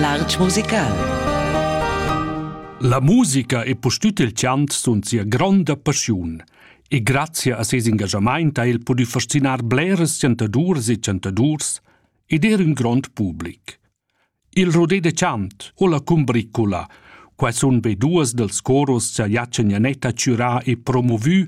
L'Artg musical. La musica e pustüt il chant sun sia gronda passiun e grazia a ses engagamaint ha el pudü fascinar bleras chantaduras e chantadurs ed er ün grond public. Il rodé de chant o la cumbricula, quai sun be duos dals coros cha Jace Nianetta chürà e promovü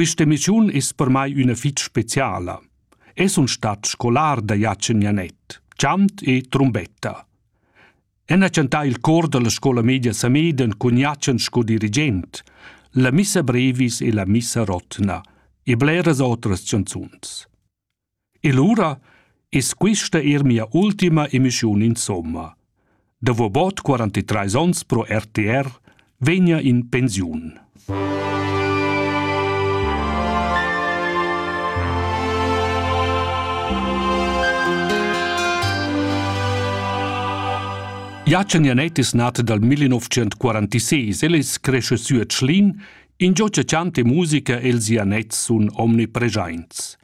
Quist'emissiun es per mai üna fich speciala. Eu sun stat scolar da Jachen Janet, chant e trumbetta. El ha chantà il cor da la scola media Sameden cun Jachen sco dirigent, la missa brevis e la missa rotna e bleras otras chanzuns. E lura es quista eir mia ultima emischiun insomma. Davo bod 43 ons pro RTR vegna in pensiun. Jacen Janet es nat dal 1946, el es cresce sü a Tschlin, ingio cha chanta e musica e'ls Janets sun omnipreschaints.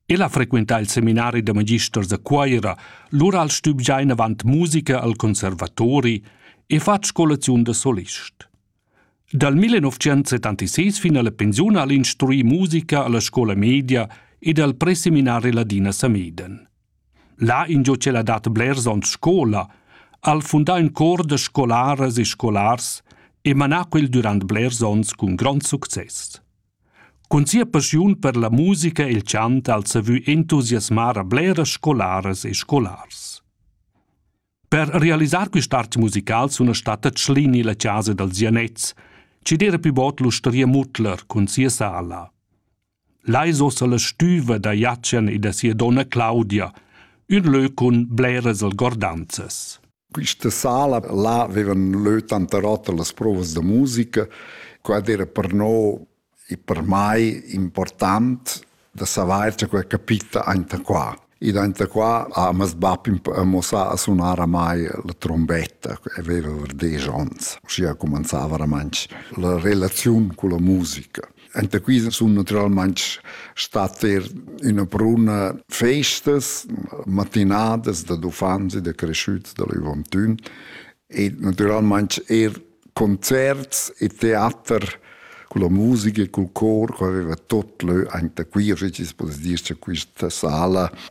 El ha frequentà il seminari da magisters a Cuira, lura al stübgià inavant musica al conservatori e fatg scolaziun da solist. Dal 1976 fin alla pensiun ha el instruì musica alla scola media ed al preseminari Ladina Sameden. Là ingio ch'el ha dat blers onns scola, ha el fundà ün cor da scolaras e scolars e manà quel durant blers onns cun grond success. Cun sia passiun per la musica e il chant ha el savü entusiasmar a bleras scolaras e scolars. Per realisar quist'art musical suna statta Tschlini la chasa dals Janets, chi d'eira pü bod l'ustaria Mutler cun sia sala. Là es ossa la stüva da Jatschen e da sia donna Claudia, ün lö cun bleras algordanzas. Questa sala là avevan leu tanta rota las provas da musica, quad era per no e per mai important da saver che quei capita enta qua. Ed enta qua ha mas bab mossà a sunar a mai la trombetta, che aveva var dieci onns. Uschia comenzava ramantsch la relaziun con la musica. Enta qui sun naturalmaing stat eir üna bruna festas, matinadas da d'uffants e da creschüts da l'Uvantun e naturalmaing eir concerts e teater con la musica e col cor ch'aveva tot lö anta qui, o schi poss dir cha quista sala